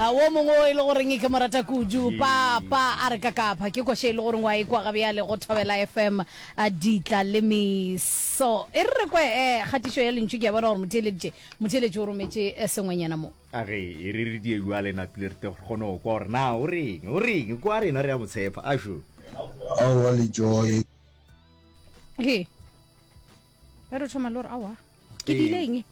a wo mongwe o e le goreng ke morata kudu papa a re ka kapha ke kwashe e le goreng wa e kwa gabe ya le go thobela fm a ditla le meso e re re kwe um kgatišo ya lentšu ke ya bona gore motheeleditše motheeletše o rometse eh, sengwenyana mo a re e re re die jwa lena pele re te re kgone go kwa gore na o reng o reng kwa rena re ya mo tshepa a sho aowa le joy he ge re thoma le gore awa ke dileng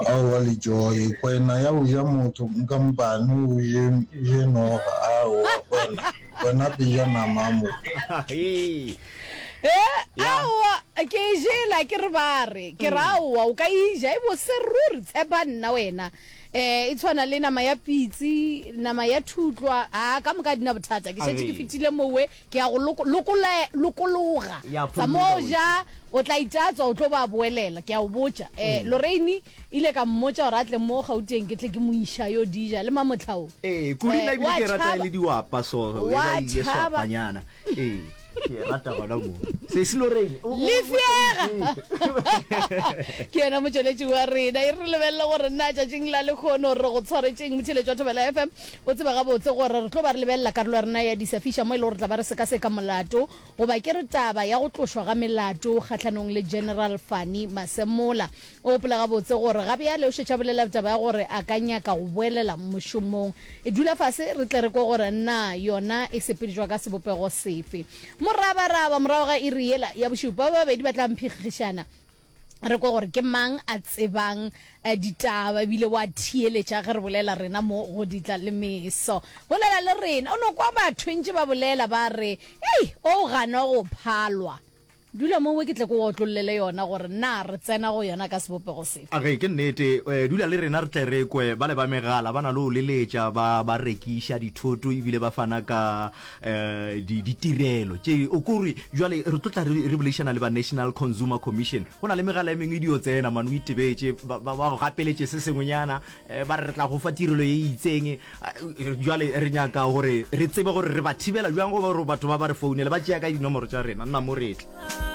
awa le joy kwena ya o ja motho nka mpane o je noga awa kwena kwena ke ja nama mo awa ke e jela ke re bare ke re awa o ka e ja e bose ruri tshepa nna wena eh e tshwana le nama ya pitsi nama ya thutlwa a ka moka dina bothata ke shetse ke fitile mowe Ke ya go loko, lokola, lokologa. Ya Tsa phologa moo o ja, itse. o tla itatswa, o tlo ba boelela. Ke ya go botša. Eh, Ee. Lorraine e ile ka mmotša gore a tle mo Gauteng ke tle ke mo iša yo di ja, le Mamotlha o. Ee, kudu nna ebile ke e rata e le diwapa so, e Wa ba ile tšhaba. swapanyana. Ee, ke e rata gona moo. Sesi Lorraine. o- o- Lefšega! Ee. ke yena motšweletši wa rena e re lebelele gore na tšatšing la lekgono re go tshwaretšeng motheletši wa thobela fm O tseba gabotse gore re tlo ba re lebelela karolo ya rena ya disafiša mo e lego re tla ba re sekaseka molato, goba ke re taba ya go tlošwa ga melato kgahlanong le General Fani Masemola. O gopola gabotse gore ga bjale o šetše a bolela taba ya gore a ka nyaka go boelela mošomong. E dula fase re tle re kwe gore na yona e sepeletšwa ka sebopego sefe. Morabaraba, morago ga iri yela ya bošupa, ba babedi ba tla mphikgišana. re kwe gore ke mang a tsebang eh, ditaba ebile wa thieletša ge re bolela rena mo go ditla le meso bolela le rena o no kwa batho ntse ba bolela ba re ei o gana go phalwa dula mo we ke tle ko otlololele yona gore na re tsena go yona ka sebopego sefe a ge ke nnete eh, dula le rena re tle re kwe ba le ba megala ba na le o leletša ba ba rekiša dithoto ebile ba fana ka um di, ditirelo tše o kore jale re tlo tla re boledišana le ba national consumer commission go na le megala e mengwe e dio tsena mane o itebetše ba go gapeletše se sengwenyana um ba re re tla go fa tirelo e itseng eh, jale re nyaka gore re tsebe gore re ba thibela jang go gore batho ba ba re founele ba tšea ka dinomoro tša rena nna mo retle